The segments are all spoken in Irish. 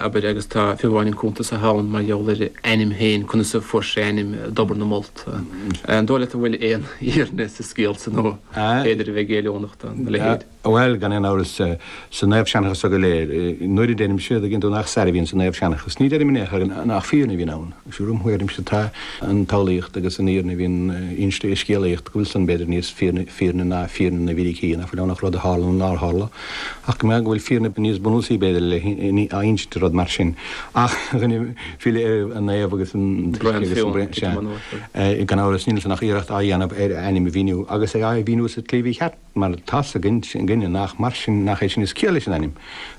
Abair, agus tá fiú amháin an cúntas atá ann mar gheall ar a ainm féin, conas a fuair sé a ainm i dTobar na Molt? An dóigh leat go bhfuil aon fhírinne sa scéal san, nó b'fhéidir a bheith géilliúnach do na leithéid? Bhuel, gan aon amhras, sa naomhsheanchas so go léir, nuair a deirimse a' dtuigeann tú nach stair a bhíonn sa naomhsheanchas, ní deirim in aon chor nach fírinne a bhíonn ann. De réir mo thuairimse, tá an tsamhlaíocht agus an fhírinne a bhíonn inste i scéalaíocht, go bhfuil san, b'fhéidir, níos fírinne ná fírinne na bhfíricí, nach bhfuil ann ach rud a tharla nó nár tharla. Ach go mbeadh, go bhfuil fírinne níos bunúsaí, b'fhéidir, le h-innsint de rud mar sin. Ach chun filleadh ar an Naomh agus an baiste agus an Braon, sea. Gan amhras níl ansan ach iarracht á dhéanamh ar a ainm a mhíniú, agus é a' mhíniú sa tslí mhícheart, mar tá's againne nach mar sin, nach é sin is ciall leis an ainm.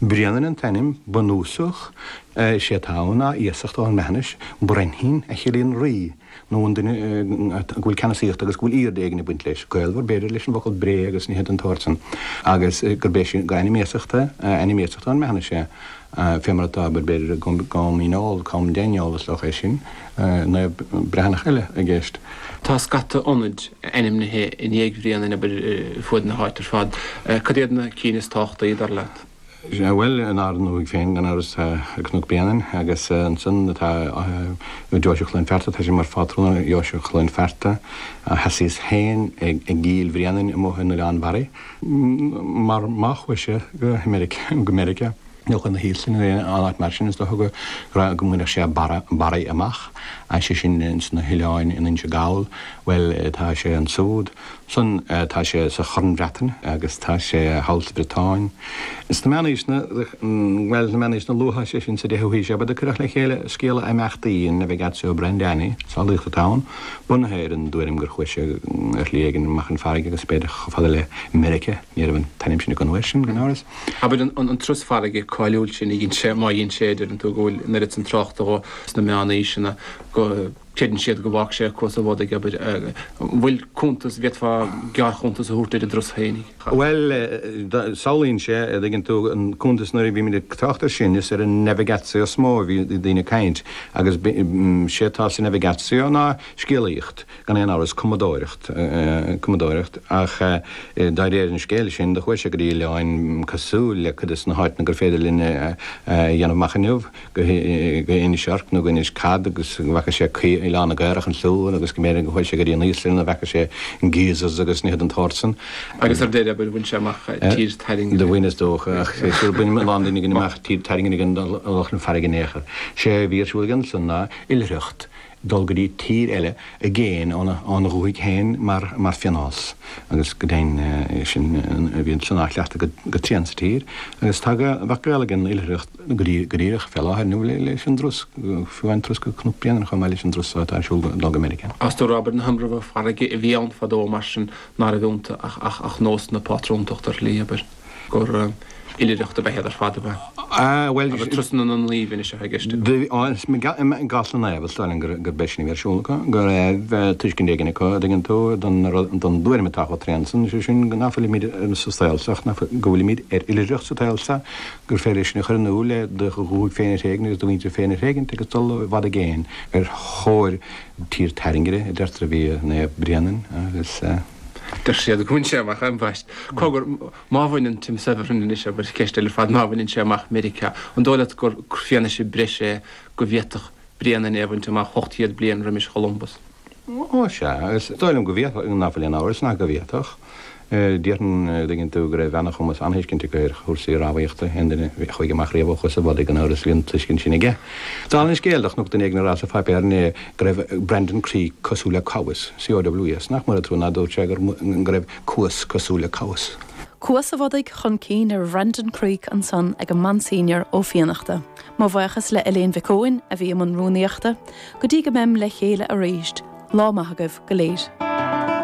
Bréanainn an t-ainm bunúsach, sé atá ann ná iasacht ón mBreathnais, Brenhin, a chiallaíonn rí. nó an duine go bhfuil ceannasaíocht agus go bhfuil aoirde éigin ag baint leis, gaolmhar, b'fhéidir, leis an bhfocal bré agus nithe den tsórt san, agus gurb é sin, gur ainm iasachta, ainm iasachta ón mBreathnais é, fé mar atá, abair, b'fhéidir, Com Dhíneol, Com Deiniol, is dócha é sin, naomh breathnach eile i gceist. Tá scata ionad ainmnithe i ndiaidh Bhréanainn, abair, ar fuaid na háite ar fad. Cad iad na cinn is tábhachtaí, dar leat? Bhuel, in ár ndúthaigh féin, gan amhras, tá Cnoc Bréanainn, agus ansan atá Deoise Chluain Fearta, tá sé mar phátrún ar Dheoise Chluain Fearta. Sheasaíos féin i gCill Bhréanainn amuigh in Oileán Bharraigh, mar má chuaigh sé go Meiriceá, nó chun na hÍoslainne nó aon áit mar sin, is dócha go raibh, go mbainfeadh sé Barraigh amach, sé sin sna hOileáin in Inse Gall. Bhuel, tá sé ansúd. Sin é, tá sé sa Chorn Bhreatain agus tá sé thall sa Bhriotáin. Sna meánaoiseanna, bhuel, sna meánaoiseanna luatha, sé sin sa deichiú haois, abair, do cuireadh le chéile scéala imeachtaí an Navigatio Brendani, scéalaíocht atá ann, bunaithe ar an dtuairim gur chuaigh sé ar shlí éigin amach chun farraige agus b'fhéidir chomh fada le Meiriceá, ní raibh an t-ainm sin acu an uair sin, gan amhras. Abair, an turas farraige cáiliúil sin a dhein sé, má dhein sé, deireann tú go bhfuil an oiread san tráchta dhó sna meánaoiseanna go. Creideann siad go bhfágfadh sé acu sa bhád, abair. An bhfuil cuntas, bhféadfá gearrchuntas a thabhairt ar an dturas féinig? Bhuel, samhlaíonn sé, a' dtuigeann tú, an cuntas nuair a bhímid ag trácht ar sin, is ar an navigatio is mó a bhí daoine ag caint agus sé atá sa navigatio ná scéalaíocht, gan aon amhras, cumadóireacht, cumadóireacht ach de réir an scéil sin do chuaigh sé go dtí oileáin cosúil le cuid de sna háiteanna gur féidir linn a dhéanamh amach inniu. go Inis Orc nó go Inis Cat agus go bhfaca sé Oileán na gCaorach ansiúd agus go mb'fhéidir gur chuaigh sé go dtí an Íoslainn ina bhfeaca sé geysers agus nithe den tsórt san. Agus ar deireadh bhuel bhain sé amach Tír Tairngire. Do bhain is dócha ach is dócha gur bhain a lán daoine againn amach Tír Tairngire gan dul amach chun farraige in aon chor. Sé a bhí ar siúl aige ansan ná oilithreacht. dul go dtí tír eile i gcéin óna dhúthaigh féin mar phionós agus go deimhin sin bhí an cineál cleachtaidh go tréan sa tír agus tá go mbeadh gaol ag an oilithreacht go díreach fé láthair nó leis an dturas fiú an turas go Cnoc Bréanainn chomh maith leis an dturas atá ar siúl dul go Meiriceá. Is dócha abair na hIomramha farraige a bhí ann fadó mar sin ná raibh iontu ach nós na pátrúntachta ar shlí, abair. gur oilithreacht a b'eadh ar fad a. Ah, bhuel. Agus turasanna na Naomh anois atá i gceist agam. Bhí, á, is i gcás na Naomh is dóigh liom gur gur b'é sin a bhí ar siúl acu, go raibh tuiscint éigin acu, a' dtuigeann tú, don rud, don dtuairim atá chomh tréan san, sé sin ná fuilimíd sa saol seo, ná fuil, go bhfuilimíd ar oilithreacht sa tsaol seo, gur féidir é sin a chur in iúl le do dhúthaigh féin a thréigean agus do mhuintir féin a thréigint agus dul i bhfad i gcéin ar thóir tír tairngire a deirtear a bhí Naomh Bréanainn agus. Deir siad gur bhain sé amach ambaist. Cogar, má bhaineann, Tim Severin anois, abair, ceist eile ar fad, má bhaineann sé amach Meiriceá, an dóigh leat gur fianaise breise é go bhféadfadh Bréanainn é a bhaint amach ocht gcéad bliain roimis Cholumbus? Ó, sea, is dóigh liom go bhféadfadh, ná fuil aon amhras ná go bhféadfadh. Déarfainn go dtuigeann tú go raibh an-chumas, an-thuiscint aige ar chúrsaí rámhaíochta, aon duine a chuaigh amach riamh ó Chuas an Bhodaigh gan amhras bhí an tuiscint sin aige. Dála an scéil, do chonac duine éigin á rá sa pháipéar inné, go raibh Brandon Creek cosúil le Cowes, C-o-w-e-s, nach mór an trua ná dúirt sé gur go raibh Cuas cosúil le Cowes. Cuas an Bhodaigh chun cinn ar Bhrandon Creek ansan ag an Monsignor Ó Fiannachta. Mo bhuíochas le Eibhlín Mhic Eoin a bhí i mbun rúnaíochta. Go dtí go mbeim le chéile arís, lá maith agaibh go léir.